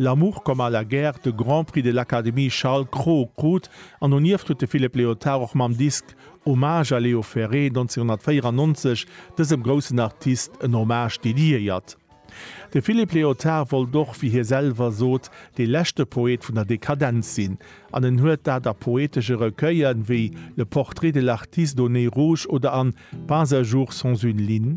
L'amour comme à la guerre de Grand Prix de l'Académie Charles Cros krut an donieft huet de Philippe Léotard och mam Disk Hommage à Léo Ferré 1994 dësem groussen Artist en Hommage dediéiert. De Philippe Léotard wollt och, wéi hie selwer sot, dee leschte Poet vun der Dekadenz sinn an en huet dat a poetesche Recueillen, wéi Le Portrait de l'artiste au nez rouge oder an Pas un jour sans une ligne,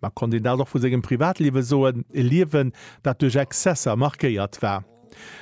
Ma konnt een dat och vu sengem Privatliewe soen, e Liewen, dat duerch Exzesser markéiert war?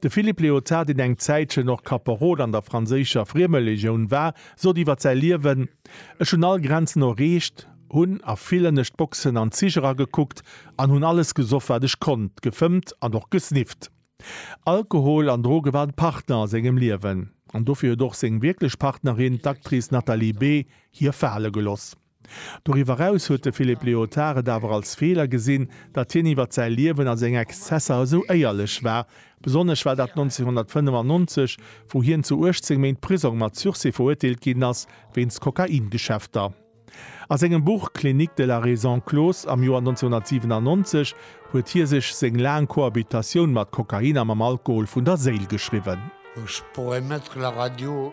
De Philippe Léotard, deen eng Zäitchen och Kaperol an der franséischer Friemelegioun war, sot iwwer säi Liewen, Ech hunn all Grenzen erreecht, hunn a villen Esch d'Boxen an d'Zich eragekuckt an hunn alles gesoff, wat ech konnt, gefëmmt an och gesnifft. Alkohol an Droge waren Partner a sengem Liewen. An dofir huet och seng wierklech Partnerin, d'Actrice Nathalie Bée, hie fale geloss. Doriwwer eraus huet de Philippe Léotard et awer als Feeler gesinn, datt hien iwwer säi Liewen a seng Exzesser esou éierlech war. Besonnesch war dat 1995, wou hien zu 18 Méint Prisong mat Sursis verurteelt ginn ass, wéinst Kokaingeschäfter. A sengem Buch Clinique de la raison close am Joer 1997 huet hie sech seng laang Cohabitatioun mat Kokain a mam Alkohol vun der Séil geschriwwen. Ech brauch e Mëtteg la radio.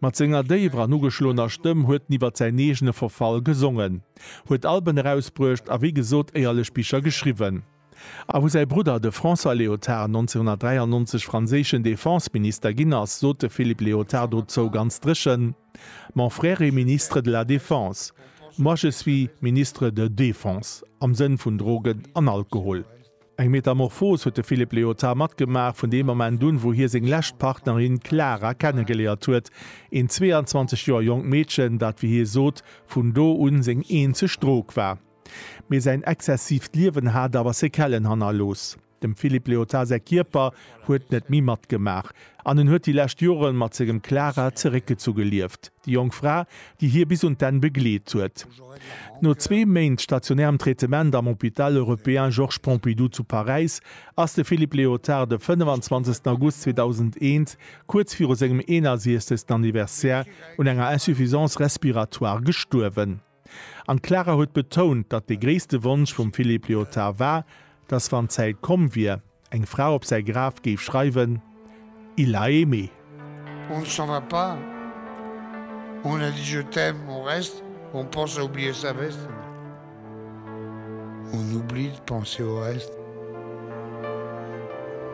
Mat senger déiwer an ugeschloener Stëmm huet en iwwer säin eegene Verfall gesongen, huet Alben erausbruecht a wéi gesot éierlech Bicher geschriwwen. A wou säi Brudder, de François Léotard, 1993 franséischen Defense-Minister ginn ass, sot de Philippe Léotard dozou ganz dréchen, Mon frère est ministre de la Défense, moi je suis ministre de Défense, am Sënn vun Drogen an Alkohol. Eng Metamorphos huet de Philippe Léotard matgemaach, vun deem Moment un, wou hie seng lescht Partnerin Clara kennegeléiert huet, een 22 Joer jonkt Meedchen, dat, wéi hie sot, vun do un seng eenzeg Drog war. Mee säin exzessiivt Liewen hat awer Sekellen hannerlooss. Dem Philippe Léotard säi Kierper huet net méi matgemaach. an en huet déi lescht Jore mat sengem Clara zeréckgezu gelieft, déi jonk Fra, déi hie bis un d'Enn begleet huet. No zwee Méint stationärem Traitement am Hôpital européen Georges Pompidou zu Paräis ass de Philippe Léotard de 25 August 2001, kuerz viru sengem 61. Anniversaire, un enger Insuffisance respiratoire gestuerwen. An d'Clara huet betount, datt de gréisste Wonsch vum Philippe Lyotard war, datt wann d'Zäit komm wier, eng Fra op säi Graf géif schreiwen, Il l'a aimée. On ne s'en va pas, on a dit je t'aime, on reste, on pense à oublier sa veste, on oublie de penser au reste,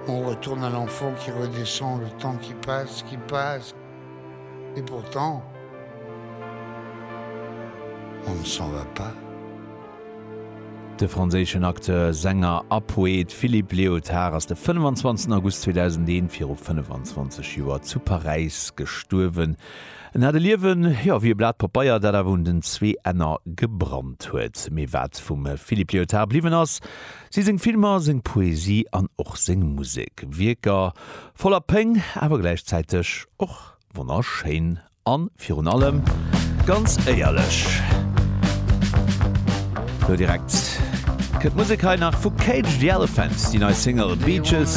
on retourne à l'enfant qui redescend, le temps qui passe, qui passe. Et pourtant on ne s'en va pas. De franséischen Acteur, Sänger a Poet Philippe Léotard ass de 25 August 2001, viru 25 Joer, zu Paräis gestuerwen. En hat e Liewen, jo, wéi e Blat Papeier, dat awer un den zwee Enner gebrannt huet. Mee wat vum Philippe Léotard bliwwen ass, Si seng Filmer, seng Poesie an och seng Musek, Wierker voller Péng, awer gläichzäiteg och wonnerschéin a virun allem ganz éierlech. Lo direkt kënnt d'Musek hei nach vu Cage the Elephant, déi nei Single Beaches.